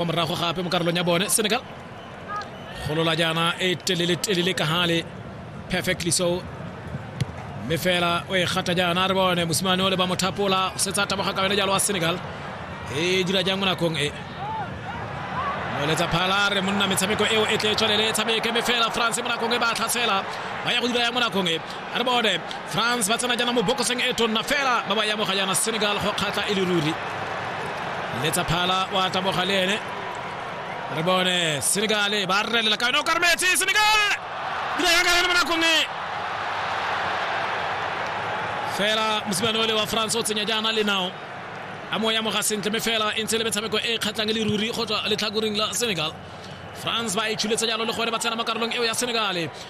kwa morago gape mo karolong ya bone senegal golola jaana e telele telele ka gale perfectly so mme fela o e gata jaana re bone mosimane o le ba mothapola o setsa taboga ka yone jalo wa senegal e dira jang mo nakong e moletsa phala re monna metshameko eo e tle e tswelele e tshameke mme fela france mo nakong e ba tlhasela ba ya go dira yang mo nakong e a re bone france ba tsena jaana mo bokoseng e tonna fela ba ba yamoga jaana senegal go kgatla e le ruri letsa phala wa taboga le ene re bone senegal ba relela ka yone o karmetse senegal dira ya ka yone mo nakong e fela mosimane ole wa france o tsenya jaana le nao a mo yamoga sentle me fela e ntse le metshameko e kgatlhang le ruri go tswa letlhakoreng la senegal france ba e tshuletse jalo le gore ba tsena mo karolong eo ya senegale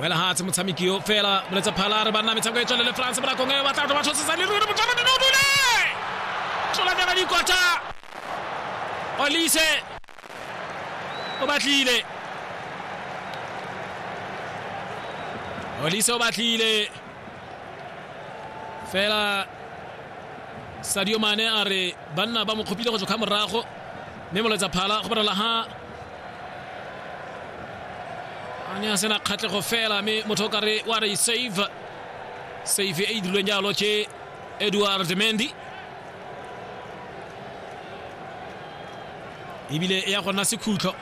wela hatse motshameki yo fela boletse phala re banna metshameko e tswelele france mo nakong e batla batho ba tshosesa le ruri motšhaba dino dule tlola bjaka dikotha olise o batlile olise o batlile fela sadio mane a re banna ba mo kgopile go tswa kga morago mme moletsa phala go bonala ha a ne a sena kgatlhego fela mme motho o kare wa re save save e e dirilweng jalo ke edward mendy ebile e ya go nna sekhutlo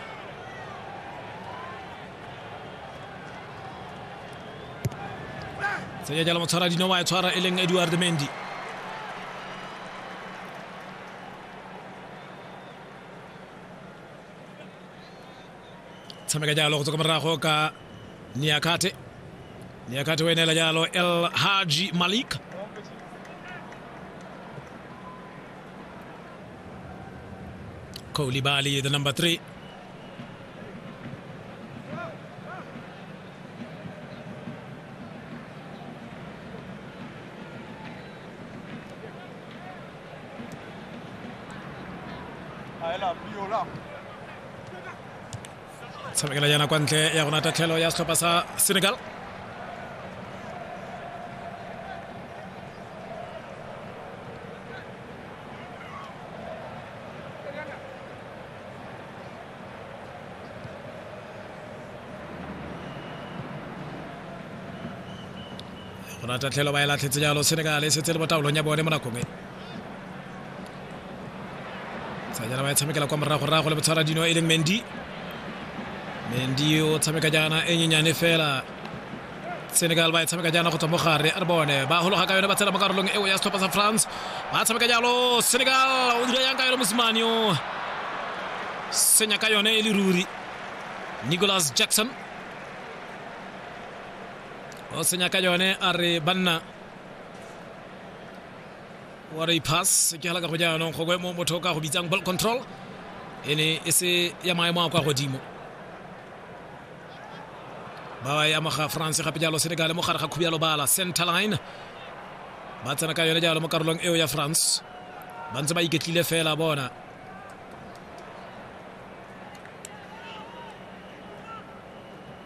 tsenya jalo motshwara dino wa e tshwara e leng edward mendy tshameka jalo go tswa ka morago ka niakate niakate o e neela jalo el haji malik kolibali the number three tshamekela yana kwa ntle ya gona tatlhelo ya setlhopha sa senegal go na tatlhelo ba e latlhetse jalo senegal e setse le mo taolong ya bone mo nakong e tsanyana ba e tshamekela kwa moragorago le botshwara dino e leng mendi mendi o tshameka jaana e nyenyane fela senegal ba e tshameka jaana go tswa mo gare a re bone ba gologa ka yone ba tshela mo karolong eo ya setlhopha sa france ba tshameka jalo senegal o dira yang ka yone mosimane o senya ka yone e le ruri nicholas jackson o senya ka yone a re banna wa re pass ke hala ka go jaanong gongwe mo motho ka go bitsang ball control e ne e se ya maemo a kwa godimo ba ba ya moga france gape jalo senegal mo gare ga khubialo bala center line ba tsena ka yone jalo mo karolong eo ya france ba ntse ba iketlile fela bona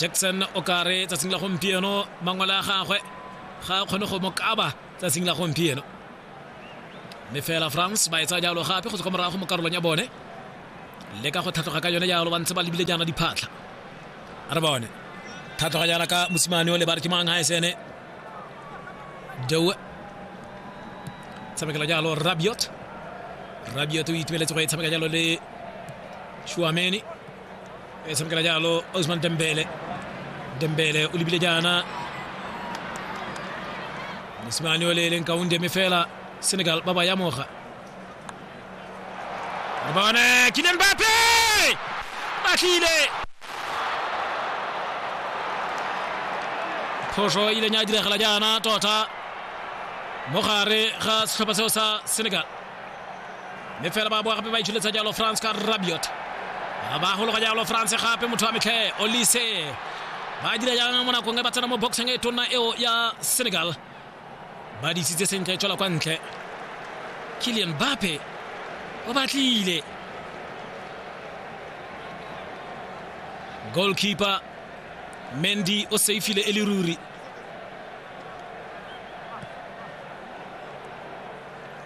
jackson o kare tsatsing la gompieno mangwele a gagwe ga a kgone go mo kaba tsatsing la gompieno mme fela france ba e tsaya jalo gape go tswa kwa morago mo karolong ya bone le ka go tlhatlhoga ka yone jalo ba ntse ba lebile jaana diphatlha a re bone tlhatlhoga jaana ka mosimane o le ba re ke mang ga esene dewe tshamekela jalo rabiot rabiot o itumeletse go e tshameka jalo le shuameni E se kala jalo Ousmane Dembele Dembele o lebile jaana mosimane o le e leng kaunde mme fela Senegal ba ba yamoga re bone Kylian Mbappe ba tlile phoso e ileng ya diragala jaana tota mo gare ga setlhopha seo sa Senegal mme fela ba boa gape ba itsholetsa jalo france ka rabiot ba gologa jalo france gape motho wa metlhe olise ba dira jang mo nakong e ba tsena mo boxeng e tonna eo ya senegal ba disitse sentle tswela kwa ntle kilian bape o batlile goalkeeper mendy o seifile e le ruri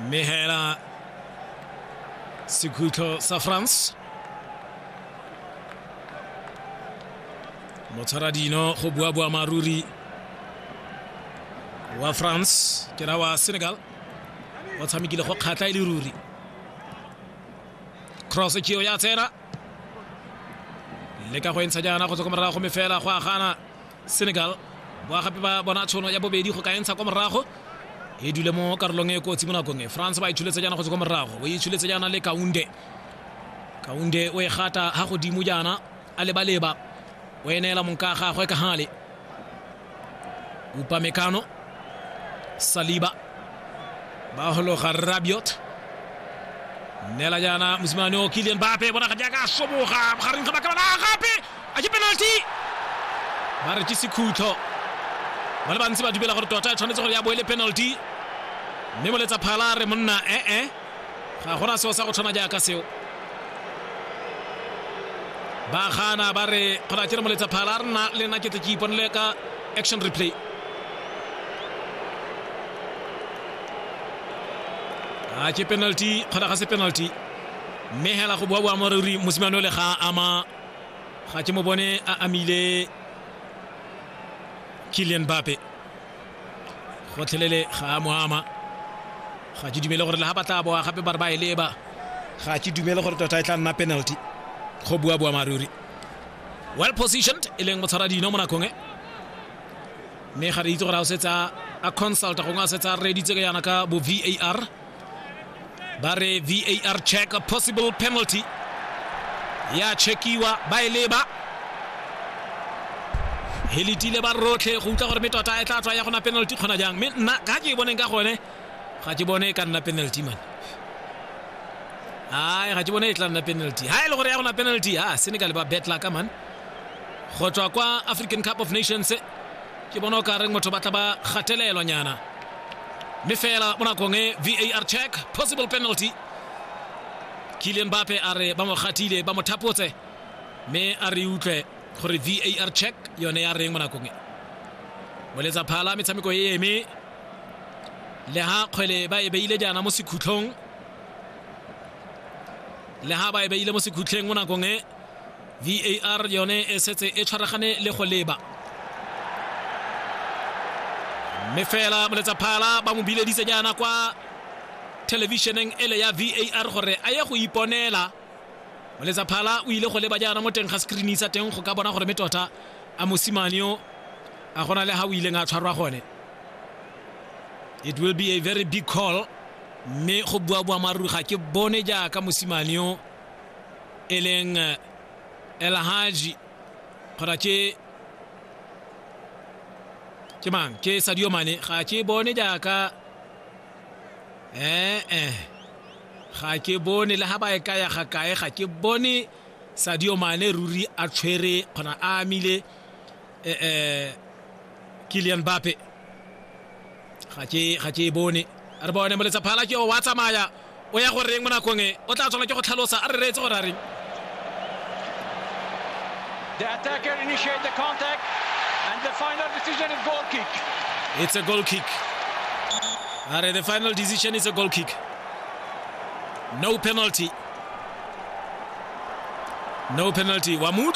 mme hela sekhutlho sa france motshwara dino go bua bua maruri wa france ke ra wa senegal o tshamekile go kgatlha e le ruri cross ke yo ya tsena le ka go entsha jaana go tswa ko morago mme fela go agana senegal ba gape ba bona tshono ya bobedi go ka entsha kwa morago e dule mo karolong e kotsi mo nakong e france ba itshuletse jaana go tswa kwa morago o itshuletse jaana le kaunde kaunde o e gata ga godimo jaana a lebaleba o eneela monka gagwe ka gale upamekano saliba ba gologa rabiot nela jaana mosimane o kilian bape bona ga jaaka a soboga gareng ga bakabana gape a ke penalty ba re ke sekhutlo ba le bantsi ba dumela gore tota e tshwanetse gore ya bo e le penalty mme moletsa phala a re monna ee eh, eh. ga gona seo sa go tshwana jaaka seo ba gana ba re kgona ke re moletsa phala a rena le nna ke tle ke iponele ka action replay a ke penalty kgona ga se penalty mme hela go boa boa moruri mosimane ole ga ama ga ke mo bone a amile kilian bape gotlhelele ga a mo ama ga ke dumele gore le ga ba tla boa gape ba re ba e leba ga ke dumele gore tota e tla nna penalty go bua bua maruri well positioned e leng motshwara dino mo nakong e mme ga re itse gore a o setsa a consulta gongwe a setsa a reditse ka yana ka bo var ba re var check a possible penalty ya checkiwa ba e leba e letile ba rotlhe go utlwa gore me tota e tla tswa ya gona penalty kgona jang mme nna ka ke e boneng ka gone ga ke bone e ka nna penalty man ai ga ke bone e tla nna penalty ha e le gore ya gona penalty ha senegal ba betla ka man go tswa kwa african cup of nations ke bona o ka reng motho ba tla ba gatelelwa nyana mme fela mo nakong e var check possible penalty kilian bape a re ba mo gatile ba mo thapotse mme a re utlwe gore var check yone ya reng mo nakong e moletsa phala metshameko e eme le ha kgwele ba e beile jaana mo sekhutlhong le ha ba e beile mo sekhutlheng mo nakong e var yone e setse e tshwaragane le go leba mme fela moletsaphala ba mo bileditse jaana kwa thelebišeneng ele ya var gore a ye go iponela moletsaphala o ile go leba jaana mo teng ga screen sa teng go ka bona gore me tota a mosimane yo a gona le ga o ileng a tshwarwa gone it will be a very big call mme go bua boammaaruri ga ke bone jaaka mosimane yo e leng eh, elhaji kgotsa ke ke mang ke sadio mane ga ke bone jaaka ee eh, ga ke bone le ga ba e kaya ga kae ga ke bone sadio mane ruri a tshwere kgona a amile um eh, kilian bape ga ke ga ke e bone re bone moletsa phala ke o wa tsamaya o ya go reng mo nakong e o tla tshwana ke go tlhalosa a re reetse gore a reng The attacker initiate the contact and the final decision is goal kick. It's a goal kick. All right, the final decision is a goal kick. No penalty. No penalty. Wamuka